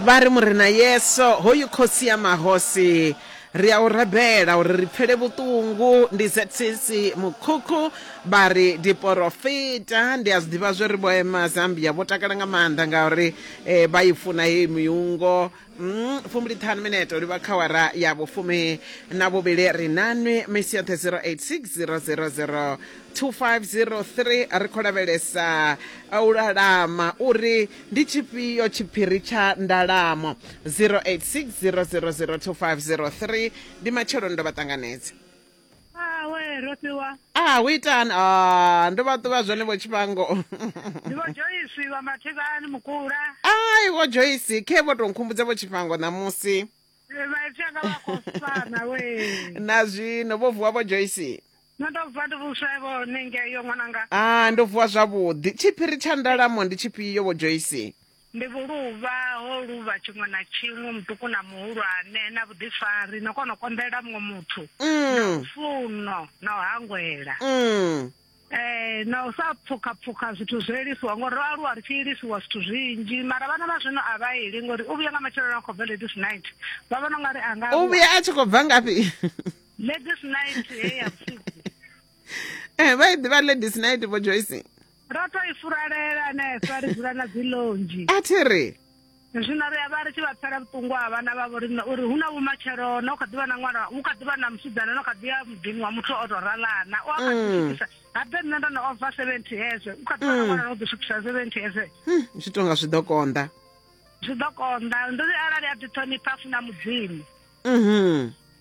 Vha ri, Murena Yesu, hoyu Khosi ya mahosi, ri a u rabela uri ri pfele vhuṱungu. Ndi Zetsisi Mukhukhu vha ri, Diporofita, ndi a zwi ḓivha zwo ri vho ema Zambia vho takala nga maanḓa ngauri eh, vha i funa heyi miungo. Mm, fumbiliṱhanu minete u livha khawara ya vhufumi na vhuvhili ri nanwi misi yoṱhe 086 000 2503 ri khou lavhelesa u lalama uri ndi tshifhio tshiphiri tsha ndalamo 0860002503 ndi matsheloni ndo vha ṱanganedza awe ro fhiwa ah u itani ah ndo vha ṱuvha zwone vho tshifhango ndi vho joyisi vha mathivhani mukula ai vho joyisi khe vho tou nkhumbudza vho tshifhango ṋamusi vhaitshaka vha khou fana we na zwino vho vuwa vho joyisi No ḓo vuwa ndi vhuswa vho hone ngeyo ṅwananga. Ah ndo vuwa zwavhuḓi. Tshiphiri tsha ndalamo ndi tshifhio vho Joyce? Ndi vhuluvha ho luvha tshiṅwe na tshiṅwe muṱuku na muhulwane na vhuḓifari no kona u konḓelela muṅwe muthu na mm. lufuno na u hangwela mm. Eh, na u sa pfukha pfukha zwithu zwo ilisiwa ngori ro aluwa ri tshi ilisiwa zwithu zwinzhi mara vhana vha zwino a vha ili ngori u vhuya nga matsheloni a khou bva ladies night vha vhona u nga ri a nga u vhuya a tshi khou bva ngafhi ladies night he ya vhusiku eh vha i ḓivha ladies night vho joyce ro to i furalela hanefha ri dzula na dzilonzhi a thi ri zwino ri a vha ri tshi vha pfela vhuṱungu ha vhana vha vho riṋe uri hu na vhumatshelo na u kha ḓivha na ṅwana hu kha ḓivha na musidzana no kha ḓi ya muḓini wa muthu o tou ralana u a kha ḓi swikisa ha ḓe nṋe ndo no ova seventy hezwe u kha ḓivha na ṅwana no ḓi swikisa seventy hezwe zwi tonga zwi ḓo konḓa zwi ḓo konḓa ndi ri arali a ḓi ṱhonipha funa mudzimu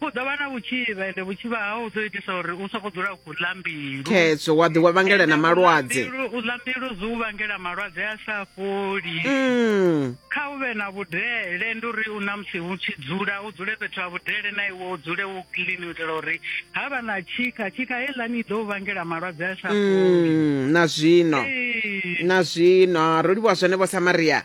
u ḓo vha na vhutshivha ende vhutshivha hau u ḓo itisa uri u soko dzula u khou ḽa mbilu khetsho wa ḓi wa vhangela na malwadze u ḽa mbilu zwi u vhangela malwadze a sa fholi mm. kha u vhe na vhudele ndi uri u na musi u tshi dzula u dzule fhethu ha vhudele na iwe u dzule u clean u itela uri ha vha na tshikha tshikha heiḽani i ḓo u vhangela malwadze a sa fholi mm, na zwino na zwino ro livhuwa zwone vho samaria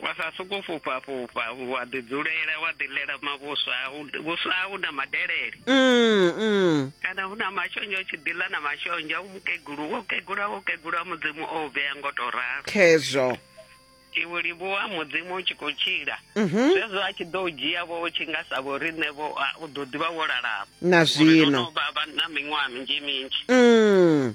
Wa sa sokou fhufha fhufha wa ḓi dzulela wa ḓi ḽela mavhuswa au vhuswa au na madelele Mm, mm. kana hu na mashonzha u tshi ḓi ḽa na mashonzha u mukegulu wo kegula wo kegula mudzimu o u vhea ngo tou ralo Khezwo. iwe livhuwa mudzimu u tshi khou tshila Mhm. zwezwo a tshi ḓo u dzhia vho u tshi nga sa vho riṋe vho a, u ḓo ḓivha wo lalama Na Ngori zwino. ro no vha vha na miṅwaha minzhi minzhi Mm.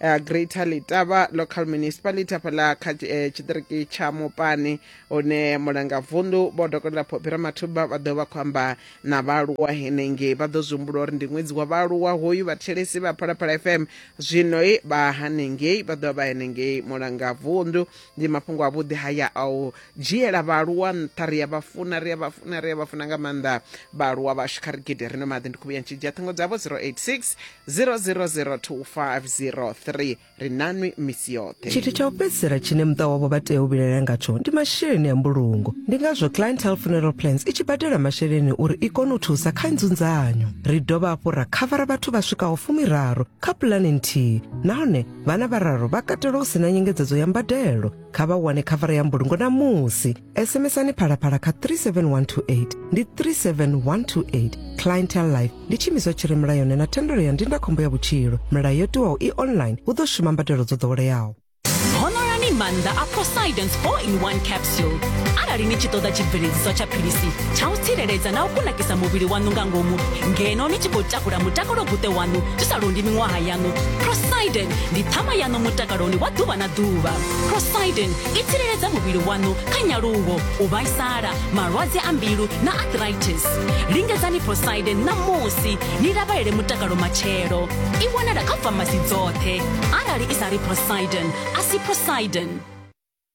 uh, greater litava local municipality hafhaḽa kha eh, tshiṱiriki tsha mupani hune mulanga vundu vho dokotela phopira mathuba vha ḓo vha khou amba na vhaaluwa henengei vha ḓo zwi humbula uri ndi ṅwedzi wa vhaaluwa hoyu vhathelesi vha phalaphala fm zwino vha hanengei vha ḓo vha vha henengei mulanga vundu ndi mafhungo a vhuḓi haya a u dzhiela vhaaluwa nṱha ri a vha funa ri a vha funa ri a vha funa nga maanḓa vhaaluwa vhashu kha ri gidi rino maḓi ndi khuvhuya ntshi dzhia ṱhingo dzavho 086 00025003 ri nanwi misi yoṱhe tshithu tsha u fhedzisela tshine muṱa wavho vha tea u vhilaela ngatsho ndi masheleni a mbulungo ndi ngazwo clientele funeral plans i tshi badela masheleni uri i kone u thusa kha nzunzanyo ri dovha hafhu ra khavara vhathu vha swikaho fumiraru kha pulani nthihi nahone vhana vhararu vha katelwa u si na nyengedzedzo ya mbadelo kha vha wane khavara ya mbulungo na musi sms-ani phalaphala kha 37128 ndi 37128 clientel life ndi tshiimiswa tshi re mulayoni na thendelo ya ndindakhombo ya vhutshilo milayo yo tiwaho i online hu ḓo shuma mbadelo dzo ḓoweleaho honorani maanḓa a posidons 4 in 1 capsule arali ni tshi ṱoḓa tshibveledziswa tsha philisi tsha u tsireledza na u kunakisa muvhili waṋu nga ngomu ngeno ni tshi khou takula mutakalo buṱe waṋu zwi sa londi miṅwaha ya yaṋu prosidin ndi ṱhama yaṋu mutakaloni wa ḓuvha na ḓuvha prosidin i tsireledza muvhili waṋu kha nyaluwo u vhaisala malwadze a mbilu na arthritis lingedzani prosidin ṋamusi ni lavhelele mutakalo matshelo i wanala kha famasi dzoṱhe arali i sa ri prosidin a si prosidin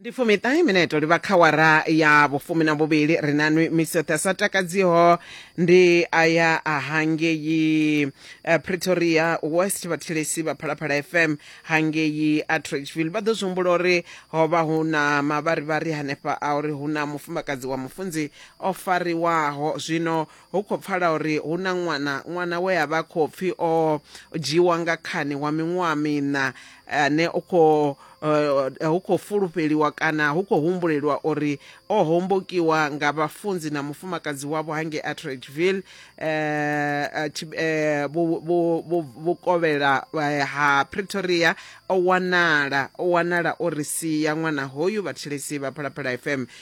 ndi fumiṱahe mineto ri vha kha wara ya vhufumi na vhuvhili ri na nwi misi yoṱhe a sa takadziho ndi aya a hangei eh, pretoria west vhathilesi vha phalaphala fm hangei atridgeville vha ḓo zwi humbula uri ho vha hu na mavharivhari hanefha a uri hu na mufumakadzi wa mufunzi o fariwaho zwino Hu khou pfala uri hu na ṅwana, ṅwana we a vha khou pfi o dzhiiwa nga khani wa miṅwaha miṋa ane u khou eh, hu khou fulufheliwa kana hu khou humbulelwa uri o hombokiwa nga vhafunzi na mufumakadzi wavho hangei Atteridgeville eh, eh, tshi- eh, vhu- vhu- vhu- vhukovhela eh, ha Pretoria o wanala o wanala o ri sia ṅwana hoyu vhathetshelesi vha Phalaphala FM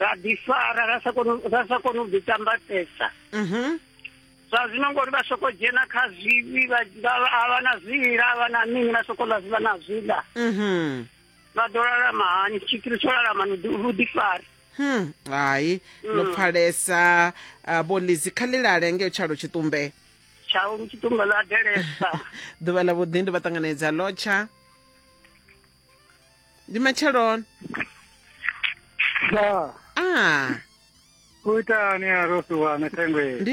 ra ḓifara ra sa koni ra sa koni u ḓitambatesa mhm. zwa zwino ngori vha soko dzhena kha zwivhi vha vha na zwila vha na mini vha soko ḽa vha na zwila mhm. vha ḓo lalama hani tshiphiri tsho lalama ni vhuḓifari hmm, hai no mm. pfalesa uh, vho lizi kha ḽilale ngeo tshalo tshitumbe tshalo tshitumbe ḽa delesa ḓuvha ḽa vhuḓi ndi vha ṱanganedza lotsha ndi matsheloni ya a u itani a rofiwana thengwe ndi